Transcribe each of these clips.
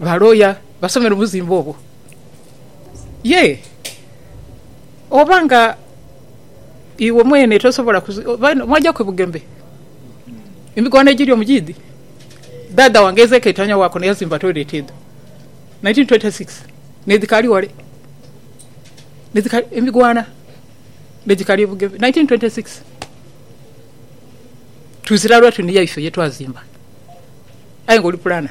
Ba looya basomera obuzimba obwo? Yee. Oba nga iwe mwene tosobola kuzimbira mwaja ku bugembe? Emigwano egiri omu giidhi. Dhaadha wange Ezekiel Tanya Wakono yazimba toilet edho 1926 n'edhikaali ghale. N'edhikaali, emigwana n'edhikaali e Bugembe 1926. Tuzira lwa tuniya ife ye twazimba. Aye nga oli pulana.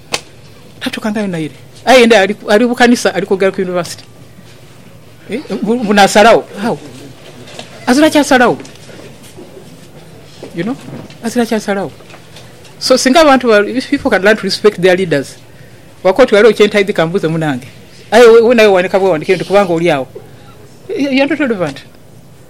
Natuukangayo naire aye nda ali bu kanisa ali kwogera ku University mbu nasalagho how? Azira kyasalagho you know azira kyasalagho so singa abantu ba if people can learn to respect their leaders wakoba oti ghaligho kyentaidhi kambuuze munange aye nawe wandika bwewandikiire nti kubanga oli agho you're not relevant.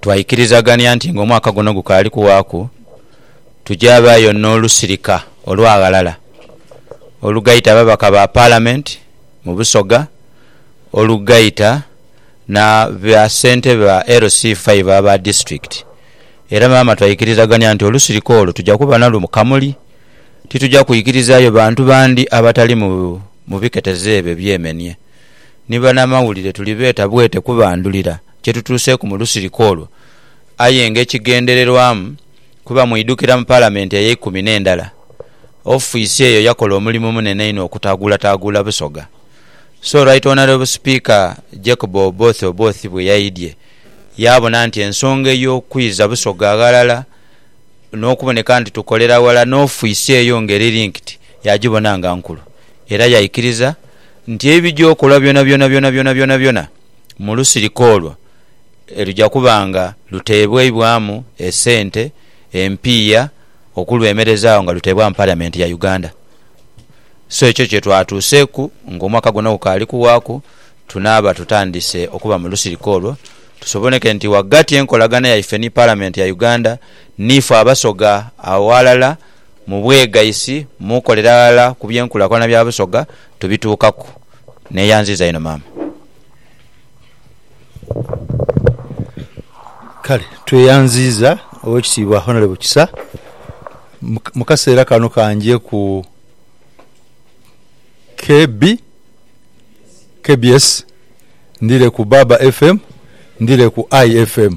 Twaikirizagania nti ng'omwaka guno gukaali kuwaaku, tujaabaayo n'olusirika olwaghalala olugaita ababaka ba Palamenti mu Busoga, olugaita na bassentebe ba LC five aba disiturikiti. Era maama twaikirizagania nti olusirika olwo tuja kuba nalwo mu Kamuli, tituja kwikirizaayo bantu bandi abatali mu biketezo ebyo ebyemenie. Ni banamawulire tulibeeta bwete kubandhulira. kye tutuuseeku mu lusirika olwo aye ng'ekigendererwamu kuba mwidhukira mu Palamenti ey'eikumi n'endala, ofiisi eyo yakola omulimu munene inho okutaguulataguula Busoga. So Right Honourable Speaker Jacob Oboth Oboth bwe yaidhye yaabona nti ensonga ey'okwiza Busoga ghalala n'okuboneka nti tukolera ghala n'ofiisi eyo ng'eri linked yagibona nga nkulu era yaikiriza nti ebijokolwa byonabyona byonabyona byonabyona mu lusirika olwo eruja kuba nga luteebwaibwamu esente empiiya okulwemerezaagho nga luteebwamu Paliamenti ya Uganda. So ekyo kye twatuuseeku ng'omwaka guno gukaali kuwaaku, tunaaba tutandise okuba mu lusirika olwo tusoboneke nti ghagati enkolagana yaife ni Paliamenti ya Uganda niife Abasoga aghalala mu bwegaisi, mu kolera ghalala ku byenkulakulana bya Busoga Tubituukaku. Neeyanziiza inho maama. Kale tweyanziiza Owekitiibwa Honourable Kisa mu kaseera kano ka nje ku KB, KBS, ndhire ku Baaba FM, ndhire ku IFM.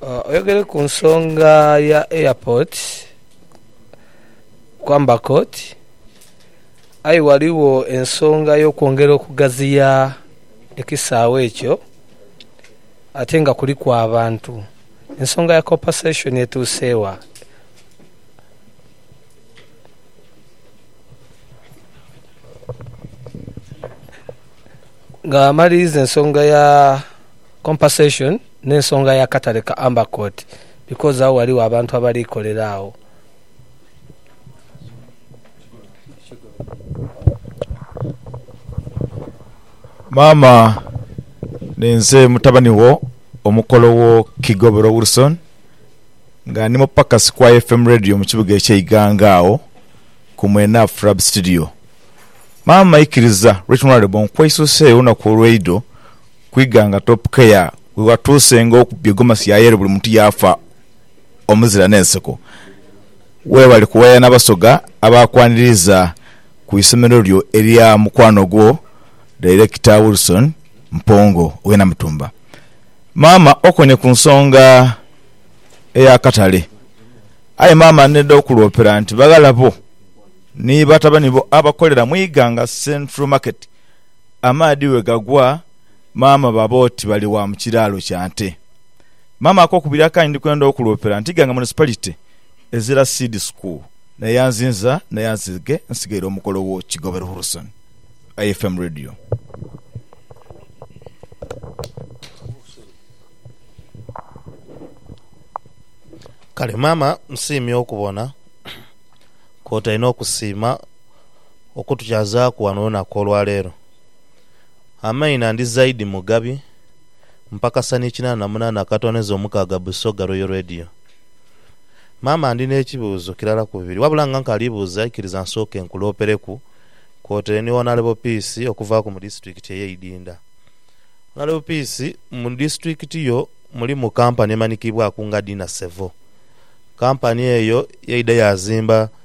Oyogere ku nsonga ya Airport kwamba Court aye ghaligho ensonga y'okwongera okugaziya ekisaawe ekyo ate nga kuliku abantu. Ensonga ya Compensation etuuse wa? Nga amaliriza ensonga ya Compensation. N'ensonga y'akatale ka Amber Court, because agho ghaligho abantu abali kolera agho. Maama, ninze mutabani wo omukolo wo Kigobero Wilson, nga ndi mupakasi ku IFM Radio mu kibuga eky'e Iganga agho ku mwena Frab Studio. Maama ikiriza Right Honourable nkweisuseegho olunaku olweidho, ku ighanga Top Care ghe watuusenga okubba egomasi ya yelo buli muntu yaafa omuzira n'enseko. Weebale kuwayana Abasoga abaakwaniriza ku isomero lyo erya mukwano gwo Director Wilson Mpongo ow'e Namutumba. Maama okoonye ku nsonga ey'akatale. Aye maama n'edha okuloopera nti baghala bo ni batabani bo abakolera mu ighanga Central Market, amaadhi bwe gagwa maama baba oti bali wa mu kiraalo kya nte. Maama akokubiri akandi ndi kwenda okuloopera nti Iganga Municipality ezira Seed School naye anzinza naye anzige nsigaire omukolo wo Kigobe Ruhurusoni. IFM Radio. Kale maama nsiimye okubona kwotaine okusiima. okutukyazaaku wano olunaku olwa leero. Amaina ndi Zaidi Mugabi, mpakasa ni kinaana na munaana akatooneza omukaaga Busoga Royal Radio. Maama ndi n'ekibuuzo kirala ku bibiri wabula nga nkaali buuza ikiriza nsooke nkuloopereku kwotaire ni Wonalebo Peace okuvaaku mu disitulikiti eye Idinda. Wonalebo Peace, mu disitulikiti yo mulimu kampani emanikiibwaku nga Dina Sevo. Kampani eyo yaidha yaazimba.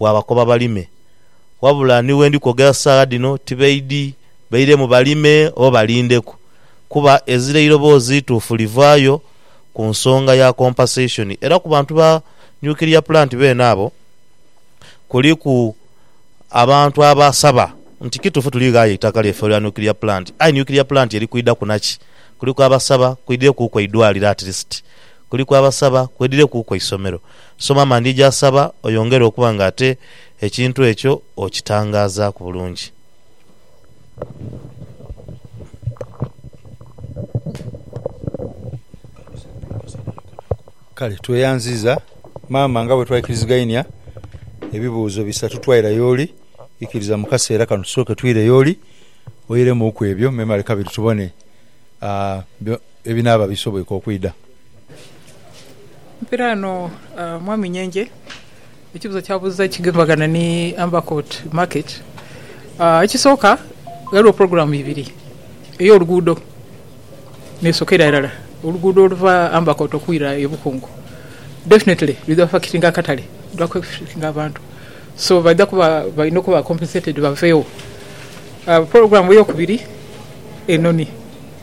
waabakoba balime. Wabula ni we ndi kwogera saagha dhino tibaidhi bairemu balime oba balindeku, kuba ezira eiroboozi ituufu livaayo ku nsonga ya compensation. Era ku bantu ba nuclear plant beene abo, kuliku abantu abasaba nti kituufu tuli ghaaya eitaka lyaife olwa nuclear plant, aye nuclear plant eri kwidhaku naki? Kuliku abasaba kwidhirekuuku eidwaliro at least. kuliku abasaba kwedhirekuuku eisomero. Soma amandhi gy'asaba oyongere okuba nga ate ekintu ekyo okitangaazaaku bulungi. Kale tweyanziiza maama nga bwe twaikirizigainia ebibuuzo bisatu twaira y'oli. Ikiriza mu kaseera kano tusooke twire y'oli oiremuuku ebyo memale kabiri tubone Ebinaaba bisoboike okwidha. Mpira eno Mwami Nyenje ekibuzo kyabuza ekigemagana ni Ambercourt market. Ekisooka ghaligho program ibiri eyo luguudo nesokera irala oluguudo oluva Ambercourt okwira e Bukungu definitely lwidha affectinga akatale lwidha ku affectinga abantu so baidha kuba balina okuba compensated bavegho. Program eyokubiri enoni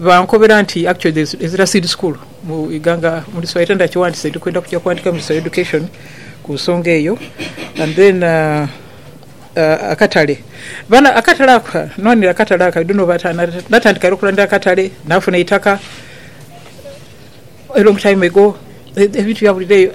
Bankobera nti actually there is Ezra Seed School mu Iganga mu Luswayiri era ndhakiwandise ndi kwenda kuja kuwandika mu Luswayiri Education ku nsonga eyo and then akatale bana akatale ako nwanire akatale ako I don't know oba natandika era okulwanira akatale, nafuna eitaka. A long time ago ebintu byabulira eyo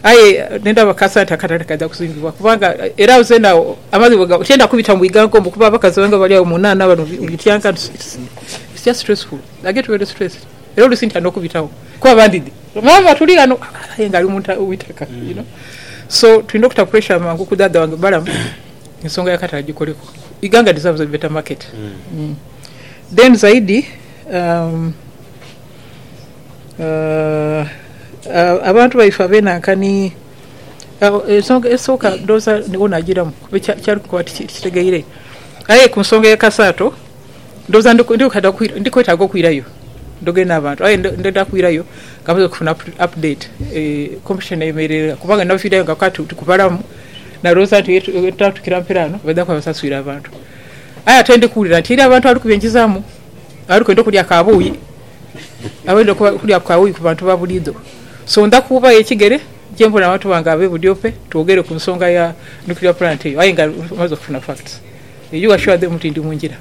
aye nendaba akasa nti akatale kaidha kuzimbibwa kubanga era agho zeena agho amazi bwegaba tienda kubita mu bwiganka omwo kuba abakazi bange abali agho mu nhaanha bano bityanka nti it's just stressful I get very stressed era oluusi ntya n'okubitagho kuba bandidhi maama tuli ghano aye nga ali mu itaka you know so tulina okuta pressure mangu ku dhaadha wange Balaam ensonga y'akatale agikoleku Iganga deserves a better market then zaidi umm. Abantu baife abenhankani, ensonga esooka ndhowooza ni wo naagiramu kyali kukoba nti tikitegeire. Aye ku nsonga ya Kasaato, ndhowooza ndi kwetaaga okwirayo ndhoge n'abantu. Aye ndidha kwirayo nga maze okufuna up to date competition eyemeleire gha kubanga naviirayo nga kati tikubalamu. Nalowooza nti ghebatuukira mperaano baidha kuba basaswire abantu. Aye ate ndi kuwulira nti eriyo abantu abali kubyenkizamu. Ali kwenda okulya akabuuyi, aba aidha okulya ku kabuuyi ku bantu ba buliidho. So ndha kuubayo ekigere gye mpola abantu bange ab'e Budiope twogere ku nsonga ya nuclear plant eyo aye nga mmaze okufuna facts. You assure them nti ndi mu ngira.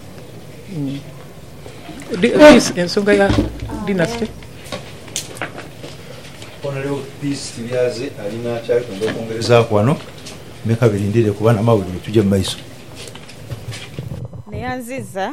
Peace, ensonga ya dynasty. Honourable Peace Kiryaaze alina kyali kwenda okwongerezaaku ghano. Ni kabiri ndidhe kuba n'amawulire tuje mu maiso. Neyanziza.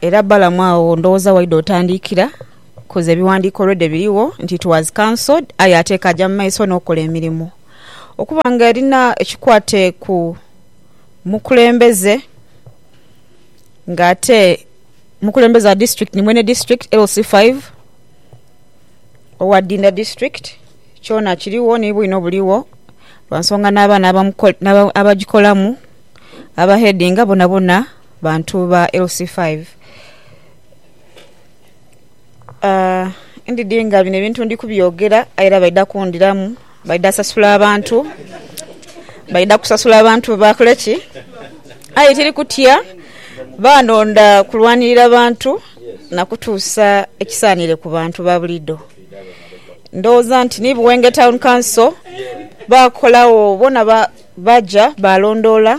Era Balamu agho ndhoghoza waidha otandikira, coz ebiwandiiko already birigho nti it was cancelled aye ate ekaja mumaiso nokola emirimo. Okuba nga erina ekikwate ku mukulembeze nga ate mukulembeze wa district ni mwene district LC five owa Dinda district kyona kirigho ni bwino burigho lwansonga nabaana abajikolamu aba headinga bonabona. Bantu ba LC5, Aah ndidhi nga bino ebintu ndi kubyogera aye era baidha kundhiramu, baidha sasula abantu, baidha kusasula abantu bakole ki? Aye tiri kutya, baanonda kulwanirira bantu na kutuusa ekisaanire ku bantu ba buliido. Ndhoghoza nti ni Buwenge Town Council baakolagho bona baja baalondoola.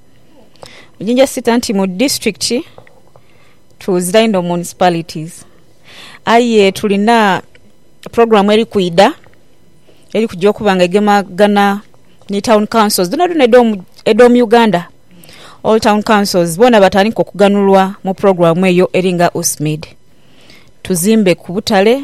Jinja sita nti mu disiturikiti twuzira inho municipalities aye tulina pulogulamu eri kwidha eri kugya okuba nga egemagaine ni tawuni kansozi dhonadhona edho mu Uganda, old tawuni kansozi boona batandike okuganhulwa mu pulogulamu eyo eri nga USMID. Tuzimbe ku butale.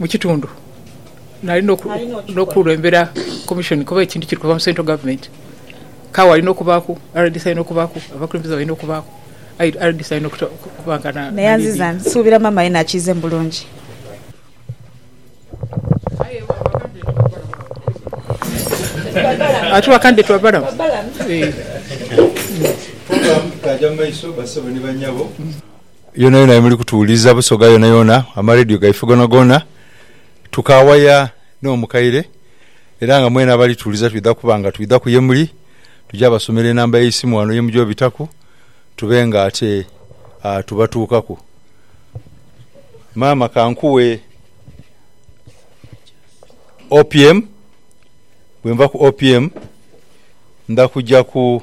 mu kitundu nali n'okukulembera komishoni kuba ekintu kiri kuva mu central government kale walina okubaaku, rdc alina okubaaku, abakulembeze balina okubaaku aye rdc alina okuba nga na leading. Nsuubira maama yena akiizemu bulungi. Ati ba candidate babalamu? Eeh. Program kaaja mu maiso bassebo ni bannyabo. Yonayona yemuli kutuwuliza, busoga yonayona, amaredio gaife gonagona, tukaawaya n'omukaire era nga mwena abali tuwuliza twidha kuba nga twidhaku yemuli, tuja basomera enamba y'eisimu wano yemuja obitaku tube nga ate tubatuukaku. Maama kankuwe OPM, bwenva ku OPM ndha kujaku.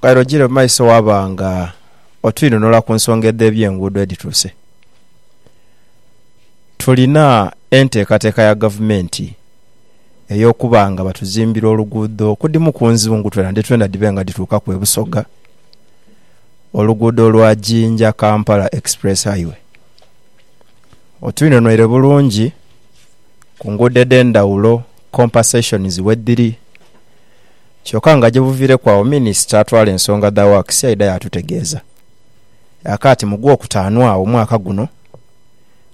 Kale ojire mu maiso waba nga otwinhonhola ku nsonga edh'ebyenguudo edhituuse. Tulina enteekateeka ya gavumenti ey'okuba nga batuzimbira oluguudo ku dhimu ku nzungu twena ni twena dhibe nga dhituukaku e Busoga, oluguudo lwa Jinja - Kampala Express Highway. Otwinhonhoire bulungi ku nguudo edh'endhaghulo, compensation wedhiri. Kyoka nga gyebuviireku agho minisita atwala ensonga dha works yaidha yaatutegeeza ya kaati mu Gwokutaanu agho mwaka guno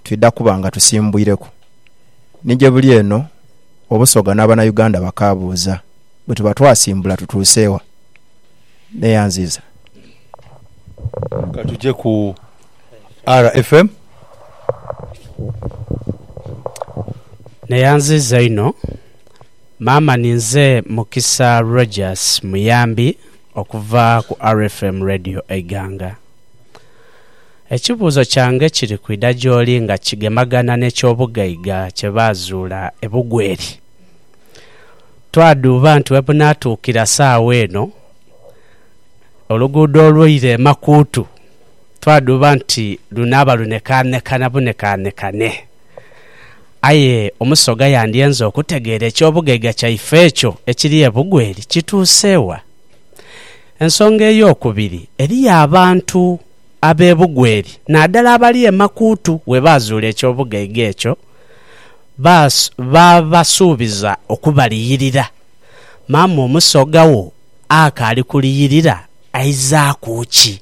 twidha kuba nga tusimbwireku ni gyebuli eno Obusoga n'Abanauganda bakaabuuza bwetuba twasimbula tutuuse wa? Neyanziiza. Ka tuje ku RFM. Neyanziiza inho. Maama ni nze Mukisa Rogers Muyambi okuva ku RFM Radio Eiganga. Ekibuuzo kyange kiri kwidha gy'oli nga kigemagana n'eky'obugaiga kye baazuula e Bugweri. Twadhuuba nti webunaatuukira saagho eno, oluguudo olweire e Makuutu twadhuuba nti lunaaba lunekaanekana bunekaanekane. Aye Omusoga yandyenze okutegeera eky'obugaiga kyaife ekyo ekiri e Bugweri kituuse wa. Ensonga ey'okubiri, eriyo abantu ab'e Bugweri naadala abali e Makuutu we baazuula eky'obugaiga ekyo, baabasuubiza okubaliyirira. Maama Omusoga wo akaali kuliyirira aizaaku ki?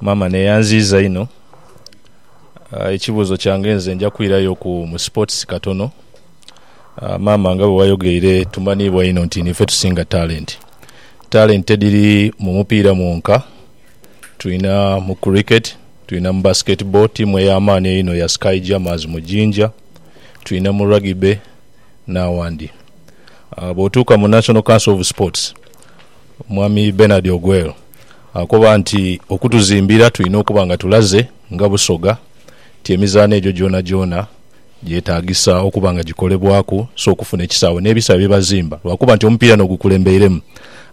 Maama neyanziiza inho. Ekibuuzo kyange nze nja kwirayo ku mu sports katono. Maama nga bwewayogeire tumaniibwa inho nti niife tusinga talenti. Talenti tidiri mu mupiira mwonka, tulina mu cricket, tulina mu basket ball, tiimu ey'amaani einho ya Sky Jammers mu Jinja, tulina mu Rugby n'awandi. Bwotuuka mu National Council of Sports. Omwami Bernard Ogwel akoba nti okutuzimbira tulina okuba nga tulaze nga Busoga nti emizaano egyo gyonagyona gyetaagisa okuba nga gikolebwaku so okufuna ekisaawe n'ebisaawe bye bazimba lwakuba nti omupiira no gukulembeiremu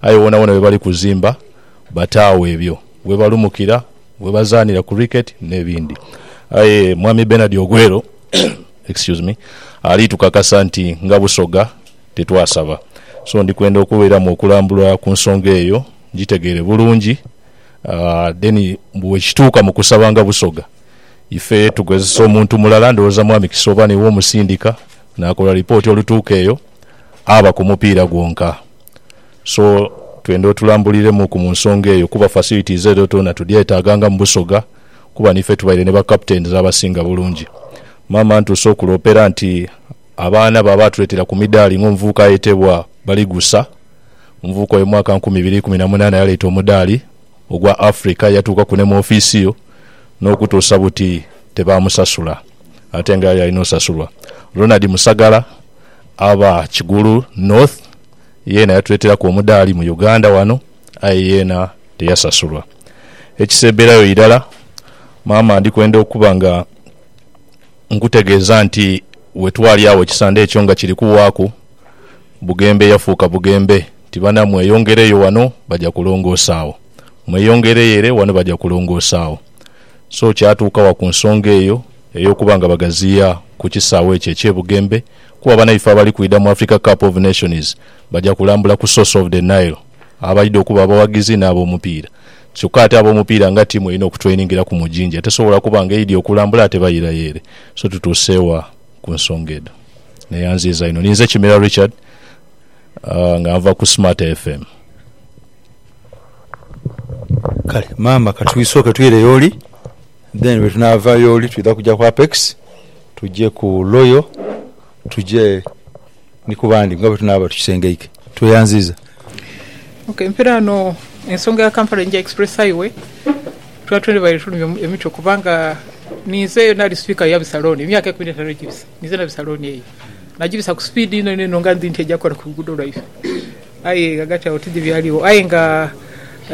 aye wonawona we bali kuzimba bataagho ebyo we balumukira, we bazaanira Cricket n'ebindi aye Mwami Bernard Ogwel excuse me ali tukakasa nti nga Busoga. tetwasaba. So ndi kwenda okubeeramu okulambula ku nsonga eyo ngitegeere bulungi then mbu bwekituuka mu kusaba nga Busoga ife tukozesa omuntu mulala ndowooza Mwami Kisooba niiwe omusindika naakola lipooti olutuuka eyo aba ku mupiira gwonka. So twenda otulambuliremuuku mu nsonga eyo kuba facilities edho dhona tudyeetaaga nga mu Busoga kuba niife tubaire ne ba captains abasinga bulungi. Maama Ntuuse okuloopera nti. Abaana ba baatuleetera ku midaali ng'omuvubuka ayetebwa Baligusa. Omuvubuka oyo mu mwaka nkumi ibiri ikumi na munaana yaleeta omudaali ogwa Africa, yatuukaku ni mu ofiisi yo n'okutuusa buti tebaamusasula ate nga yali alina osasulwa. Ronald Musagala aba Kigulu North yeena yatuleeteraku omudaali mu Uganda wano aye yeena teyasasulwa. Ekiseebberayo irala maama ndikwenda okuba nga. Nkutegeeza nti we twali agho ekisande ekyo nga kiri kuwaaku, Bugembe yafuuka Bugembe nti, Bana, mweyongereyo wano baja kulongoosa agho. Mweyongereyo ere wano baja kulongoosa agho. So kyatuuka wa ku nsonga eyo ey'okuba nga bagaziya ku kisaawe ekyo eky'e Bugembe kuba banaife abali kwidha mu Africa Cup of Nations baja kulambula ku source of the Nile abaidha okuba abawagizi n'abomupiira. Kyoka ate abomupiira nga tiimu erina okutrainingira ku Mujinja tesobola kuba nga eidhi okulambula ate bayiirayo ere. So tutuuse wa ku nsonga edho? Neyanziiza inho. Ninze Kimera Richard nga nva ku Smarter FM. Kale maama katwisooke twire y'oli then bwetunaava y'oli twidha kugya ku Apex, tugye ku Royal, tugye. Ni ku bandi nga bwe tunaaba tukisengeike. Tweyanziiza. Ok mpira ghano ensonga ya Kampala Jinja Express Highway twali twebaire tulumya emitwe kubanga ninze naali sipika ya bisalooni emyaka ekumi n'etaanu egibise. Ninze na bisalooni eyo nagibisa ku sipiidi inho inho nga ndhi nti eja kukola ku luguudo lwaife aye ghagati agho tidhi byaligho aye nga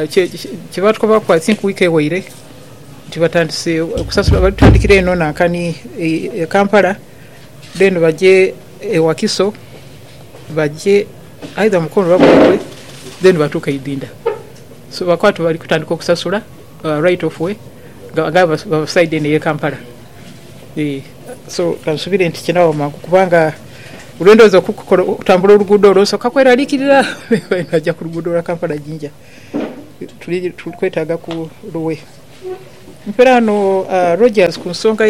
kye baatukobaku i think wiiki eweire nti batandise okusasula, bali tutandikira eno Nankani e Kampala. Then baje e Wakiso, baje either Mukono oba Buikwe then batuuke e Idinda. So bakoba tibali kutandika okusasula right of way nga bava side eno eye Kampala. Eeh so kansubire nti kinaba mangu kubanga lwendowooza okutambula oluguudo olwo nsooka kweralikirira bwenaja ku luguudo lwa Kampala Jinja. Tuli kwetaaga ku Luwe. Mperano Rogers ku nsonga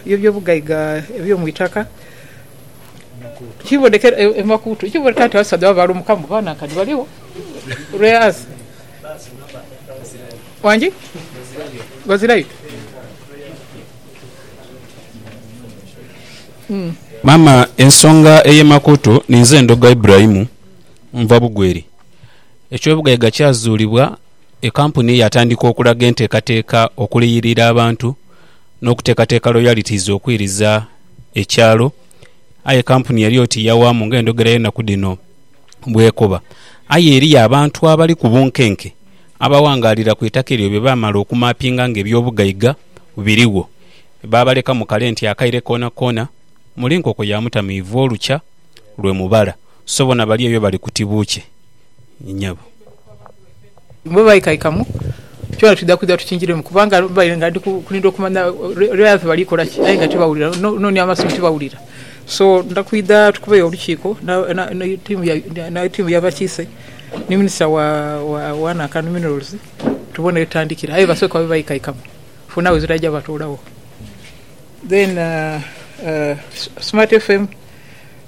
y'ebyobugaiga eby'omu itaka. Kibonekera e Makuutu kibonekera nti abasaadha baba baalumukamu baba nankani baligho rare earth wangi bazirayo. Maama ensonga ey'e Makuutu ninze Ndhoga Ibrahim nva Bugweri. Ekyobugaiga kyazuulibwa. Ekampuni yaatandika okulaga enteekateeka okuliyirira abantu n'okuteekateeka royalties okwiriza ekyalo, aye ekampuni yali oti yawaamu ng'endhogera y'enaku dhino bw'ekoba. Aye eriyo abantu abali ku bunkenke abawangaalira ku itaka eryo bye baamala okumaapinga ng'ebyobugaiga birigho, baabaleka mu kale nti akaire koonakoona muli nkoko ya mutamiivu olukya lwe mubala, so bona bali eyo bali kutibuukye. nyabo. Bwe baikaikamu kyona twidha kwidha tukinjiremu kubanga baidha nga ndi kulindha okumanya lya yaafe bali kola ki aye nga tibawulira no ni amaso tibawulira. So ndidha kwidha tukubeyo olukiiko ni tiimu ya bakiise ni Minisita wa Nanka ni Minerals tubone we tutandikira aye basooke babe baikaikamu for now ezira aja batoolagho then Smart FM.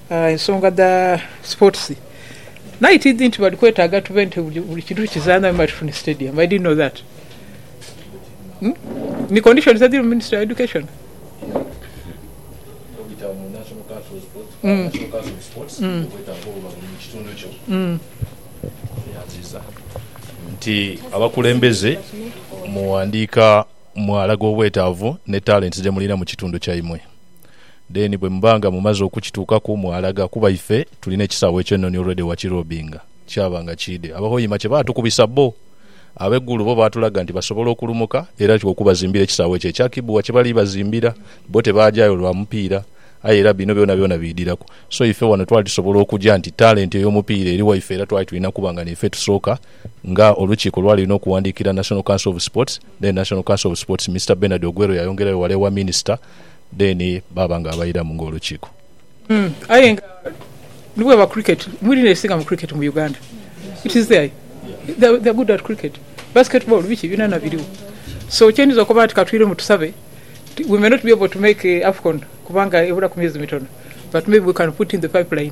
Ensonga dha sports night idi nti bali kwetaaga tube nti buli kintu tukizaanha wemale tufune stadium. I didn't know that. Ni conditions edhiri mu ministry ya education. Nti abakulembeze mu wandiika mwalaga obwetaavu ne talents dhemulina mu kitundu kyaimwe. Then bwemuba nga mumaze okukituukaku mwalaga kuba ife tulina ekisaawe ekyenoni already wakirobinga kyaba nga kiide. Aba Hoima kyebatukubisa bbo abe Gulu bo batulaga nti basobola okulumuka era nti okubazimbira ekisaawe ekyo ekya Kibugha kyebali bazimbira bbo tebaajayo lwa mupiira aye era bino byonabyona biidiraku so ife wano twali tusobola okuja nti talenti eyomupiira eri waife era twali tulina kuba nga niife tusooka nga olukiiko lwali lulina okuwandiikira National Council of Sports then National Council of Sports Mister Bernard Ogwero yayongerayo wala ewa Minisita Then baaba nga abairamu nga olukiiko. Aye nga ni bweba cricket, mbu lino erisinga mu cricket mu Uganda. It is there. They're they're good at cricket. Basketball, biki byonana biriwo. So kye ndidha okoba nti katwiremu tusabe, we may not be able to make AFCON kubanga ebulaku myezi mitono but maybe we can put in the pipeline.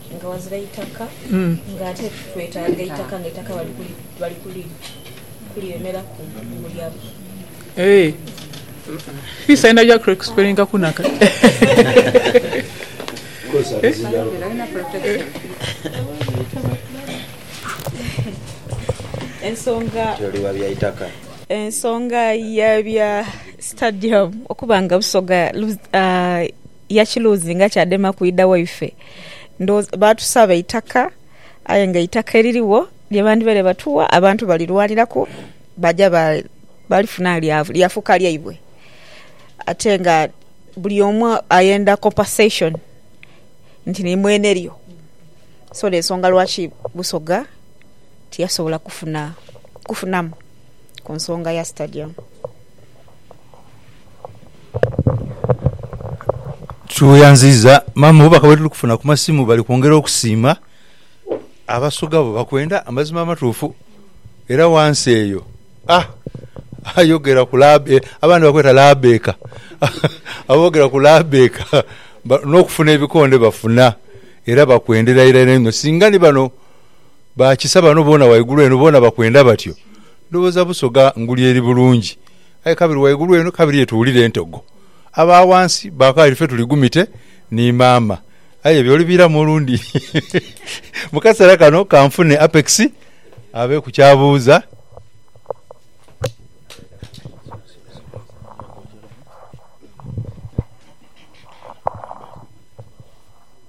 Nga ghazira eitaka nga ate twetaaga eitaka nga eitaka bali kuliremeraku bulya bu. Ensonga ya bya sitadiyamu okuba nga Busoga. yakiluuzinga kyadema kwidha waife. Ndhowooza baatusaba eitaka aye nga eitaka eririgho lye bandhibaire batuwa abantu balirwaniraku baja balifuna lyafuuka lyaibwe. Ate nga buli omu ayenda compensation nti ni mwene lyo. So y'ensonga lwaki Busoga tiyasobola kufunamu ku nsonga ya sitadiyamu. Tweyanziza maama obubaka bwetuli kufuna ku masimu bali kwongera okusiima Abasoga bo bakwenda amazima amatuufu era wansi eyo ah ayogera ku labe abandi bakweta labeeka abogera ku labeeka n'okufuna ebikonde bafuna era bakwendera irala inho singa ni bano Bakisa bano bona waigulu eno bona bakwenda batyo ndowoza busoga nguli eri bulungi aye kabiri waigulu eno kabiri ye tuwulira entogo aba wansi bakali fe tuli gumite ni mama aye ebyo olibiramu olundi mukasera kano kanfune Apex abe ku kyabuuza.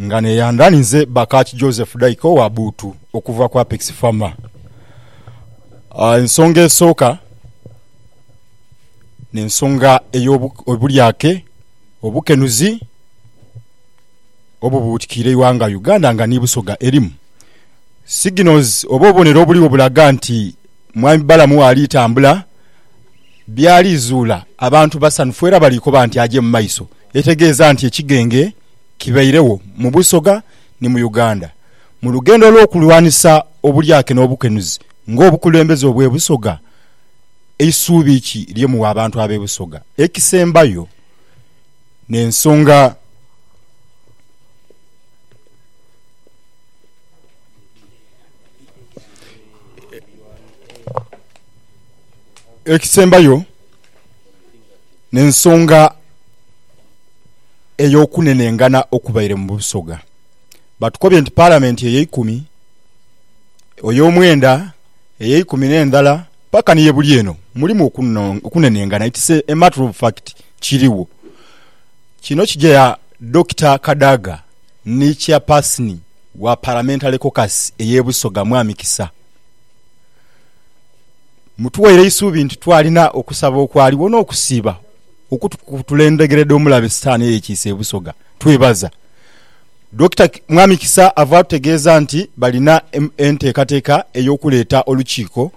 nga neyandha ni nze Bakach Joseph Daika owa Buutu okuva ku Apex Farmer. Ensonga esooka n'ensonga ey'obulyake, obukenuzi obubuutikiire eighanga Uganda nga ni Busoga erimu. Signals oba obubonero obuligho bulaga nti Mwami Balaam waali tambula, by'ali zuula abantu basanhufu era bali koba nti aje mu maiso. Etegeeza nti ekigenge. kibairegho mu Busoga ni mu Uganda mu lugendo olw'okulwanisa obulyake n'obukenuzi ng'obukulembeze obw'e Busoga, isuubi ki lye mugha abantu ab'e Busoga? Ekisembayo n'ensonga ekisembayo. N'ensonga ey'okunenengana okubaire mu Busoga, batukobye nti Palamenti ey'eikumi, ey'omwenda, ey'eikumi n'endhala paka ni ye buli eno mulimu okunenengana, it's a matter of fact kirigho. Kino kigya Dokita Kadaga ni Chairpersoni wa Parliamentary Caucus ey'e Busoga Mwami Kisa. Mutuwaire eisuubi nti twalina okusaba okwaligho n'okusiiba okutukutula endhegere dh'omulabe Sitaani eyekiise e Busoga. Twebaza Dokita Mwami Kisa ava atutegeeza nti balina enteekateeka ey'okuleeta olukiiko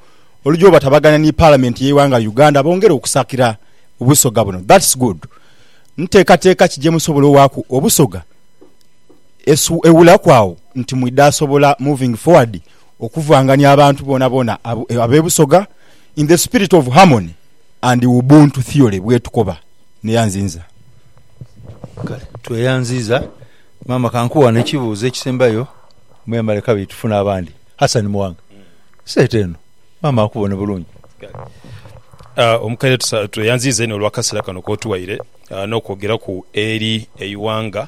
oluja obatabagania ni Palamenti y'eighanga Uganda bongere okusakira Busoga buno. That's good. Nteekateeka ki gyemusobola owaaku Obusoga esu ewulaku agho nti mwidha sobola moving forward okuvangania abantu boonaboona ab'e Busoga in the spirit of harmony and Ubuntu theory bwetukoba. Neyanzinza. Kale tweyanziiza maama kankuwe wano ekibuuzo ekisembayo mwemale kabiri tufune abandi. Hassan Muwanga sente eno maama akubone bulungi. Kale omukaire tweyanziiza inho olwakasera kano kotuwaire nokwogeraku eri eiwanga.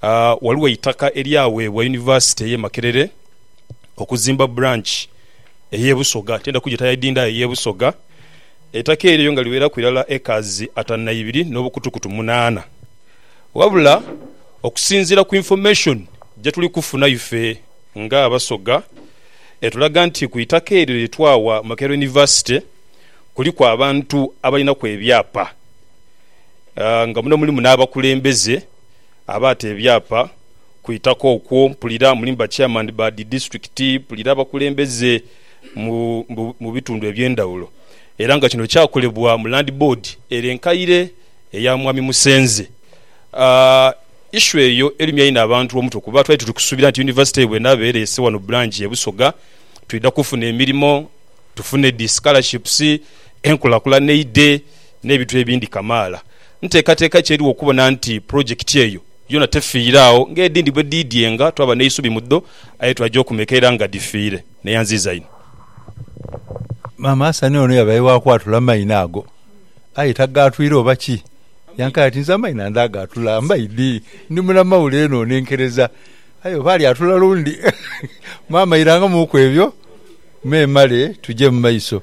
Ghaligho eitaka eryaweebwa Yunivasite y'e Makerere okuzimba branch ey'e Busoga, tiidha kugyeta ya Idinda aye ey'e Busoga. Eitaka eryo nga liweraku irala acres atanu na ibiri n'obukutukutu munaana. Wabula okusinziira ku information gyetuli kufuna ife nga Abasoga, etulaga nti ku itaka eryo lye twawa Makerere University kuliku abantu abalinaku ebyapa nga muno mulimu n'abakulembeze. abaata ebyapa ku itaka okwo, mpulira muli mu ba chairman ba dhi disitulikiti, mpulira abakulembeze mu bitundu eby'endhaghulo era nga kino kyakolebwa mu Land Board ere enkaire eya Mwami Musenze. Issue eyo erumya inho abantu omutwe kuba twali tuli kusuubira nti yunivasite bw'enaaba ereese wano branch e Busoga twidha kufuna emirimo, tufune dhi scholarships, enkulakulana eidhe. n'ebintu ebindi kamaala. Nteekateeka ki eriwo okubona nti pulojekiti eyo yoona tefiire agho ng'edhindi bwe dhiidyenga twaba n'eisubi mu dho aye twaja okumeeka era nga dhifiire? Neyanziiza inho. Maama Hassan ono yabaire wa kwatula amaino ago aye tagaatwire oba ki? Yankaire ati, Nze amaino ndagaatula mbaidhi ndi munamawule eno nenkereza aye oba alyatula lundi. Maama irangamuuku ebyo memale tuje mu maiso.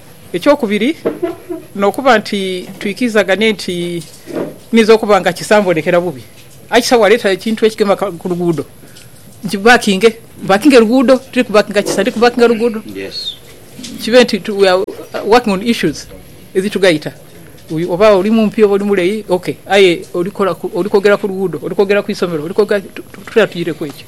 Ekyokubiri, n'okuba nti twikirizaganie nti niinza okuba nga kisa mbonekera bubi, aye kisa waleeta ekintu ekigema ku luguudo nkibakinge. Mpakinge luguudo, tiri kubakinga kisa, ndi kubakinga luguudo. Kibe nti we are working on issues edhitugaita, oba oli mumpi oba oli mulei, ok, aye oli kwogera ku luguudo, oli kwogera ku isomero, oli kwogera, tutera tuireku ekyo.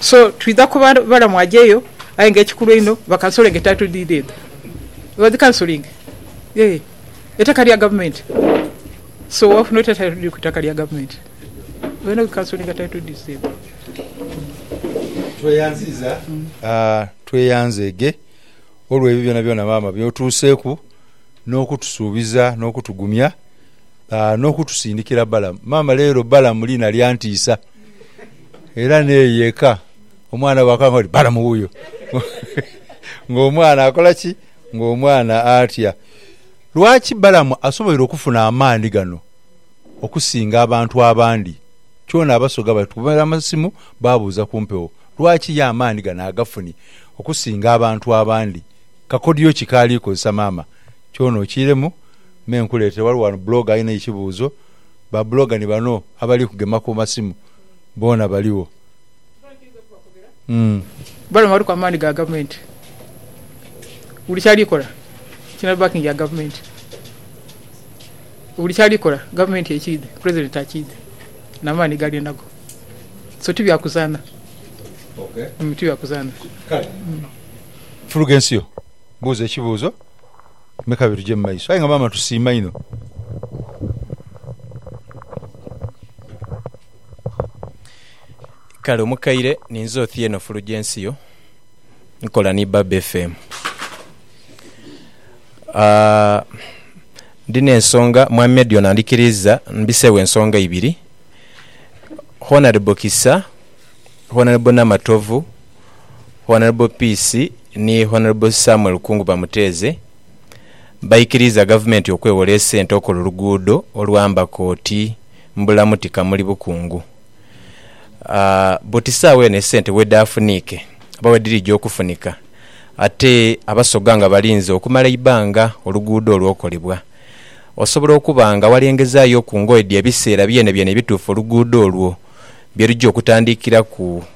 So twidha kuba balamu aja eyo aye nga ekikulu einho bakansolinge title deed edho. Badhikansolinge eeh eitaka lya gavumenti so wafuna otya title deed ku itaka lya gavumenti? Olina dhikansolinga title deeds edho. Tweyanzeege olw'ebyo byonabyona maama by'otuuseeku n'okutusuubiza n'okutugumya n'okutusindikira Balamu. Maama leero Balamu liina lya ntiisa. Era n'eyo eka omwana bw'akanga oti, Balamu wuuyo! Ng'omwana akola ki? Ng'omwana atya. Lwaki Balamu asoboire okufuna amaani gano okusinga abantu abandi? Kyona Abasoga batukubira amasimu baabuuza ku mpewo. Lwaki ye amaani gano agafunye okusinga abantu abandi? Kakodyo ki k'ali kozesa? Maama, kyona okiiremu me nkuleetere. Ghaligho ghano blogger alina ekibuuzo. ba blogger ni bano abali kugema ku masimu boona baligho. Bano baliku amaani ga gavumenti. Buli kyali kola kirina backing ya gavumenti. Buli kyali kola gavumenti ekiidhi, president akiidhi namaani gaali nago. So ti bya kuzaana. Ti bya kuzaana. Kale Fulugencio buuza ekibuuzo. Me kabiri tuje mu maiso. Aye nga maama tusiima inho. Kale omukaire ninze Othieno Fulugensio nkola ni Baba FM. Ndi n'ensonga Mwami Edion andhikiriiza mbiseegho ensonga ibiri. Honourable Kisa, Honourable Namatovu. Honourable Peace ni Honourable Samuel Kungu Bamuteeze baikiriiza Gavumenti okwewola esente okola oluguudo olwamba koti Mbulamuti Kamuli Bukungu buti saawa eno esente wedafuniike oba wedhirija okufunika ate Abasoga nga balinze okumala eibbanga oluguudo olwo okolebwa osobola okuba nga walengezayo ku ngoye dh'ebiseera byenebyene ebituufu oluguudo olwo byeruja okutandikiraku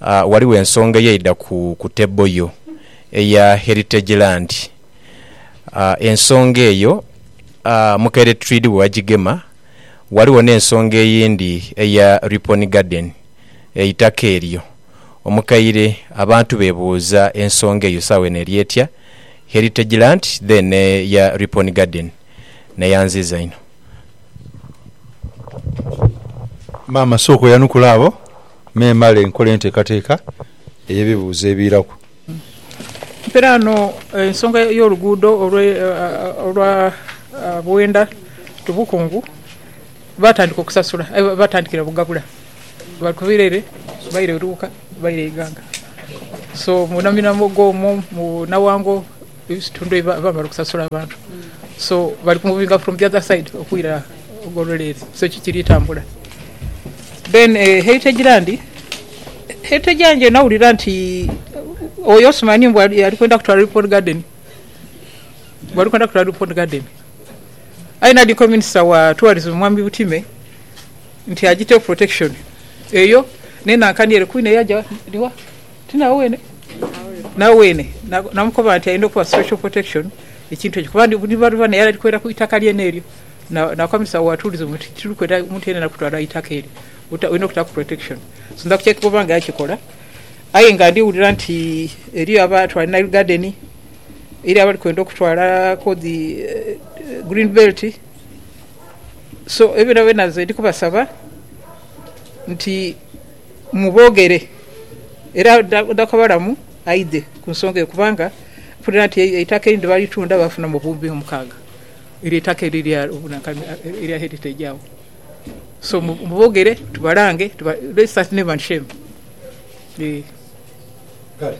Ghaligho ensonga eyaidha ku table yo eya Heritage Land. Ensonga eyo Mukeretreed bwe yagigema, ghaligho n'ensonga eyindi eya Ripon Garden, eitaka eryo. Omukaire abantu bebuuza ensonga eyo saawa eno eri etya, Heritage Land then n'eya Ripon Garden. Naye anziiza inho. Maama sooka oyanukule abo me male nkole enteekateeka ey'ebibuuzo ebiiraku. Mpera ghano ensonga y'oluguudo olwa Buwenda to Bukungu baatandika okusasula aye baatandikira Bugabula. Bali kuviira ere baire Luuka baire Iganga. So mu naminamwogo omwo mu Nawango. Ebitundu ebibaba bali kusasula abantu so bali kumuvinga from the other side okwira ogolole ere so ki kiri tambula then e eh, heritage land heritage land eno awulira nti oyo osumani mbu ali kwenda kutwala report garden mbu ali kwenda kutwala report garden aye nadiko minister wa tourism mwami Butime nti ajiteho protection eyo nenankani ere kwina eyaja niwa Nawene namukoba nti ayinza okuba special protection ekintu ekyo kuba ndi luba luba naye ali kwera ku itaka lyene eryo. Nakomesa watuliza omwo nti tiri kwenda muntu yenayena kutwala itaka eryo, olina okutaku protection. So nza kukyeka oba nga yakikola aye nga ndi wulira nti eriyo abatwala Nile garden, eriyo abali kwenda okutwala ku dhi green belt. So ebyo byonabyona nze ndi kubasaba nti. Muboogere, era oda kubalamu aidhe ku nsonga eyo, kubanga mpulira nti eitaka erindhi balitunda baafunamu obuwumbi omukaaga, eryo eitaka eryo erya bunankani erya Heritage agho. So muboogere tubalange, let's start name and shame. Eeh. Kale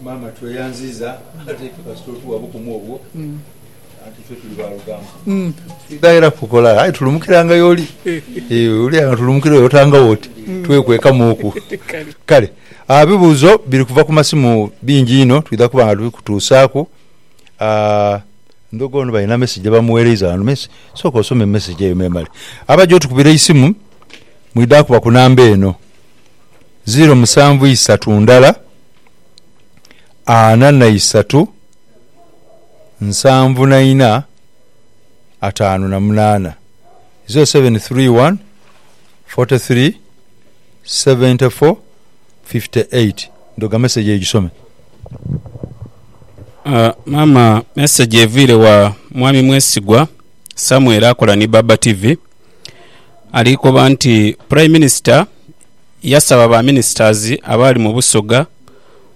maama tweyanziiza ate kasita otuwa obukumu obwo. Anti ife tuli ba lugambo. Tusighaira kukola aye tulumukiranga y'oli. Eeh, oluya nga tulumukira oyo otangagho oti twekwekamu oku. Kale ah bibuuzo biri kuva ku masimu bingi inho, twidha kuba nga tubikutuusaaku. Ah, ndhogo ono balina mesegi gye bamuweereiza ghano me si, sooka osome mesegi eyo memale. Abaja otukubira eisimu mwidha kuba ku namba eno, ziiro musanvu isatu ndala, ana na isatu. nsanvu na ina ataanu na munaana 0731 43 74 58 ndhoga message eyo gisome. Aah maama message eviire wa mwami mwesigwa Samuel akola ni Baba TV ali koba nti prime minister yasaba ba ministers abaali mu busoga,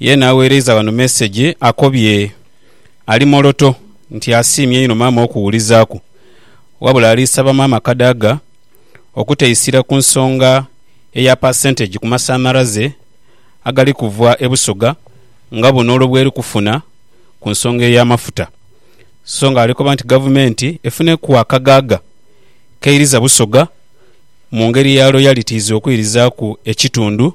Yeena agheereiza ghano meseji akobye ali Moroto nti asiimye inho maama okuwulizaaku wabula ali saba maama Kadaga okuteisira ku nsonga eya percentage ku masanhalaze agali kuva e Busoga nga buno olwo bweri kufuna ku nsonga ey'amafuta so nga ali koba nti gavumenti efuneku akaghagha keiriza Busoga mu ngeri ya loyalitiizi okwirizaaku ekitundu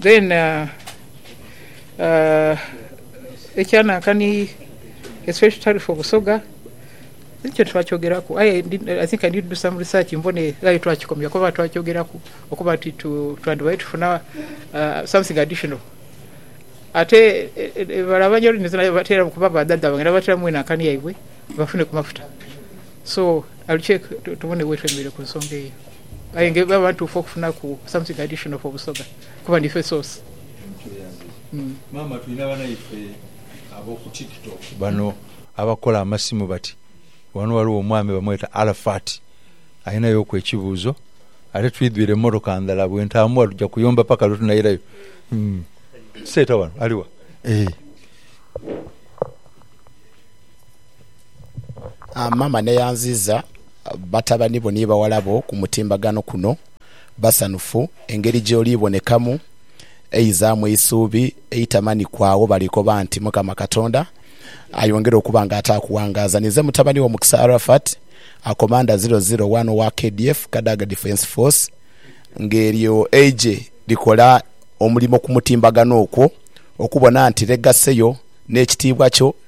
Then ekya Nankani a special tariff for Busoga ekyo titwakyogeraku aye I think I need to do some research mbone ghale twakikomya kuba oba twakyogeraku okuba nti twandibadde tufuna something additional ate bale aba New Orleans nabo bateeramu kuba badhaadha bange nabo bateeramu enankani yaibwe bafune ku mafuta so Aluce tubone wetwemereire ku nsonga eyo aye nga bwebaba ntuufu okufunaku something additional for Busoga kuba nife source. Mutuuyambe maama tulina banaife aboku tiktok bano abakola amasimu bati wano waliwo omwami bamweta Arafat alinayo ku ekibuuzo ate twidhwire emotoka ndhala bwentaamugha tuja kuyomba paka lwetunairayo Seeta wano aliwa eeh. Maama n'eyanziiza batabani bo ni baghala bo ku mutimbagano kuno. Basanhufu engeri gy'oli bonekamu, eizaamu eisuubi, eitama ni kwagho. Bali koba nti, Mukama Katonda ayongere okuba nga ataakughangaaza. Ninze mutabani wo Mukisa Arafat, a Commander Zero Zero One owa KDF, Kadaga Defence Force. Ng'eryo eigye likola omulimo ku mutimbagano okwo, okubona nti legacy yo n'ekitiibwa kyo,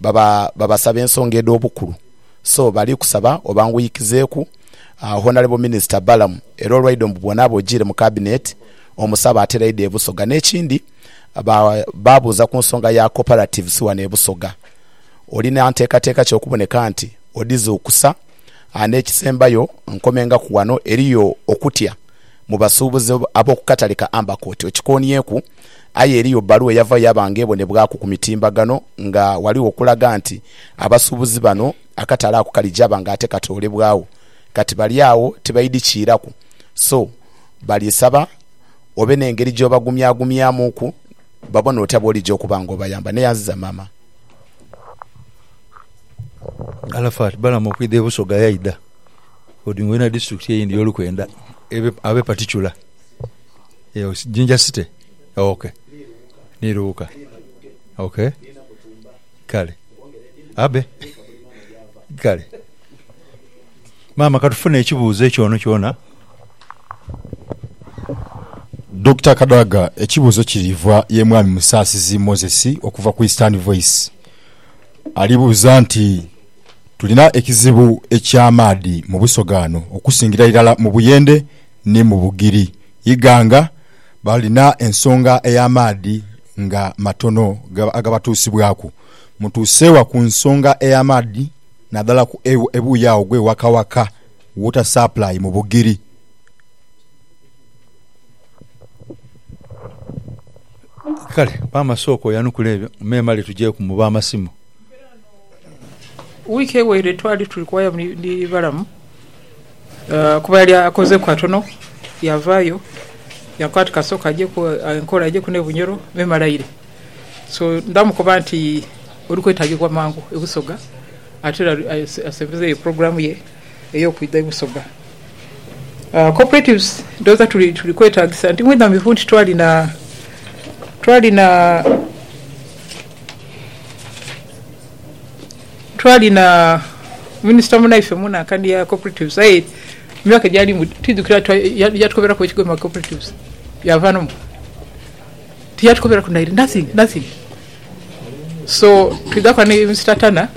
baba babasaba ensonga edh'obukulu so bali kusaba obanguyikizeeku Honourable Minister Balaam era olwaidho mbu bw'onaaba ojiire mu Cabinet omusabe atera aidha e Busoga. N'ekindi baabuuza ku nsonga ya Cooperatives wano e Busoga, olina nteekateeka ki okuboneka nti odhizuukusa? N'ekisembayo nkomengaku wano, eriyo okutya mu basuubuzi ab'oku katale ka Ambercourt okikoonyeku? Aye eriyo bbaluwa eyavayo yaba nga ebonebwaku ku mitimbagano nga ghaligho okulaga nti abasuubuzi bano akatale ako kali jaba nga ate katoolebwagho. Kati bali agho tibaidhi kiiraku so bali saba obe n'engeri gy'obagumyagumyamuuku babone otya bw'olija okuba nga obayamba. Neyanziza maama. Arafat Balaam okwidha e Busoga yaidha Odingo yena disitulikiti eyindi y'olukwenda ebe abe paticula. Eyo Jinja City. Ok. Ni Luuka. Ok. Kale. Abe. Kale. Maama katufune ekibuuzo ekyo ono kyona. Dokita Kadaga ekibuuzo kiriva ye Mwami Musaasizi Moses okuva ku Eastern Voice. Ali buuza nti tulina ekizibu eky'amaadhi mu Busoga ghano okusingira irala mu Buyende, ni mu Bugiri, Iganga, balina ensonga ey'amaadhi nga matono agabatuusibwaku. Mutuuse wa ku nsonga ey'amaadhi nadala ku ebuuyi agho gwe Waka Waka Water Supply mu Bugiri. Kale, Maama sooka oyanukule ebyo, memale tujeeku mu b'amasimu. Wiiki eweire twali tuli kuwaya ni Balamu kuba yali akozeku katono yavayo yakoba nti kasooke ajeku enkola ajeku ne Bunyoro me malaire so ndamukoba nti oli kwetagibwa mangu e Busoga ate era asembezeyo pulogulamu ye. ey'okwidha ebusoga. Cooperatives ndhooza tuli tuli kwetaagisa nti mwidhamivu nti twali na twali na twali na minisita munaife mu nankani ya cooperatives aye mu myaka egyalimu twidhukira yatukoberaku ekigwo mu ma cooperatives yaava n'omu. Tiyatukoberaku naire nothing nothing. So twidha kola ni Mister Turner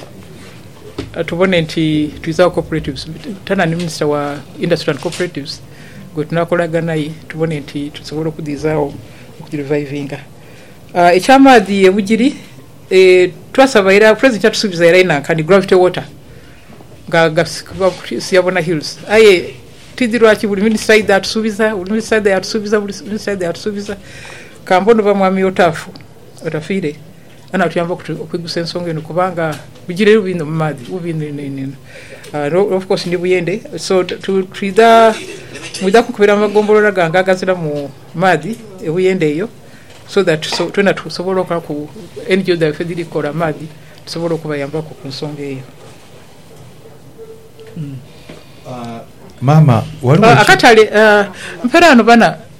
tubone nti twidha gho cooperatives. Turner ni Minisita wa Industry and Cooperatives gwe tunakolaga naye tubone nti tusobola okudhizagho okugirivayivinga. Eky'amaadhi e Bugiri twasaba era Pulezidenti yatusuubiza era einanka ni Gravity Water nga gasimbibwa ku Siabona Hills aye tidhi lwaki buli Minisita aidha atusuubiza, buli Minisita aidha yaatusuubiza, buli Minisita aidha yaatusuubiza. Ka mbone oba Mwami Otaafu. Otafiire ghano atuyamba okwigusa ensonga eno kubanga bigire bubi inho mu maadhi, bubi inho inho inho inho. Uh, of course ndi Buyende, so twidha mwidha kukubira mu magombolola gange agaziramu maadhi e Buyende eyo so that so, twena tusobola okolaku NGO dhaife edhiri kukola amaadhi tusobola okubayambaku ku nsonga eyo. Mm. Uh, maama waliwo uh, akatale uh, mperaano bana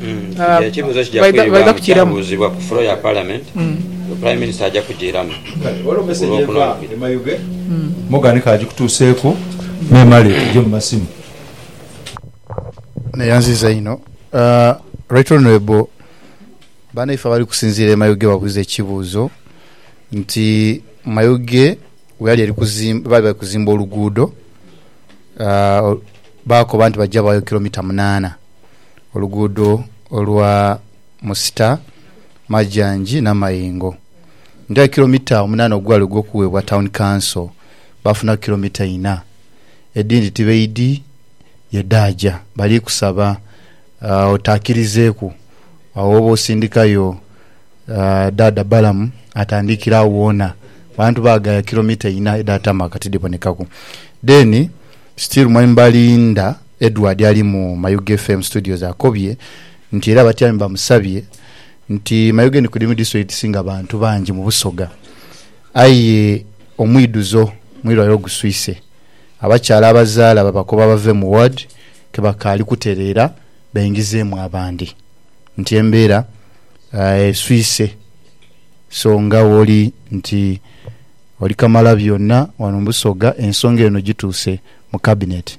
Kino ekibuuzo kija kwiribwamu kyabuuzibwa ku flo ya Palamenti nga Prime Minister aja kujiiramu ku Lwokunobiri. Neyanziza inho Right Honourable banaife abali kusinziira e Mayuge babuuza ekibuuzo nti Mayuge weyali eri kuzimba baali bali kuzimba oluguudo baakoba nti baja baayo kilometre munaana, oluguudo olwa Musita, Majanji, Namayingo. Nitughayo kilomita omunaana ogwali ogw'okuweebwa Town Council, baafunaku kilomita inha. Edhindi tibaidhi ye dhaaja. Bali kusaba otaakirizeeku agho w'oba osindikayo Dhaadha Balaam atandikire agho woona. Abantu baaghaya kilomita inha edha tarmac tidhibonekaku. Then still mwembali ndha. Edward ali mu Mayuge FM Studios akobye nti era abatyaime bamusabye nti Mayuge ni kudimi district edhisinga abantu bangi mu Busoga aye omwidhuzo mwirwaliro guswise abakyala abazaala babakoba bave mu ward kebakaali kutereera baingizeemu abandi nti embeera eswise so nga wooli nti oli kamalabyonna wano mu Busoga ensonga eno gituuse mu cabinet.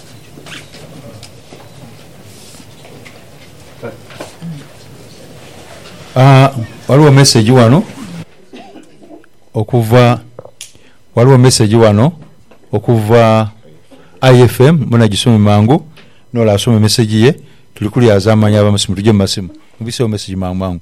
Ghaligho mesegi ghano okuva, ghaligho mesegi ghano okuva IFM mwena gisome mangu nole asome mesegi ye tuli kulyazamanha abamasimu tuje mumasimu. Mubise gho mesegi mangu mangu.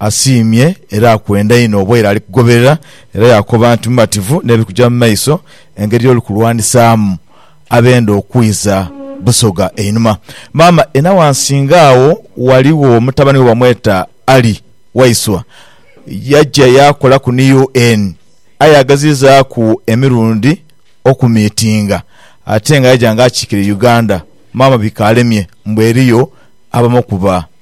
asiimye era akwenda inho oba ela ali kugoberera era yaakoba nti mumativu n'ebiri kuja mu maiso, engeri y'oli kulwanisaamu abenda okwiza Busoga einhuma. Maama e Nawansinga agho ghaligho mutabani we bamweta Ali Waiswa, yaja yaakolaku ni UN aye yagezizaaku emirundi okumiitinga ate nga yaja nga akiikirira Uganda. Maama bikaalemye mbu eriyo abamokuba.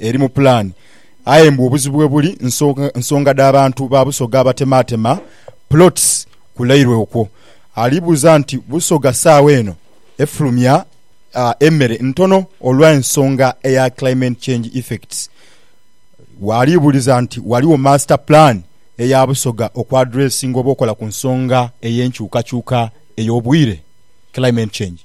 eri mu pulaani. Aye mbu obuzibu we buli nsonga dha bantu ba Busoga abatemaatema plots ku Lairwe okwo. Ali buuza nti Busoga saagha eno efulumya emere ntono olwa ensonga eya climate change effects. Waali buuliza nti waliwo master plan eya Busoga oku addressinga oba okola ku nsonga eyenkyukakyuka eyobwiire, climate change.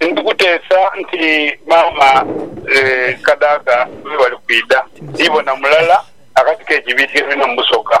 Ndi kuteesa nti maama Kadaga bwe bali kwidha, ndibona mulala akati k'ekibiiti ke tulina mu busoga.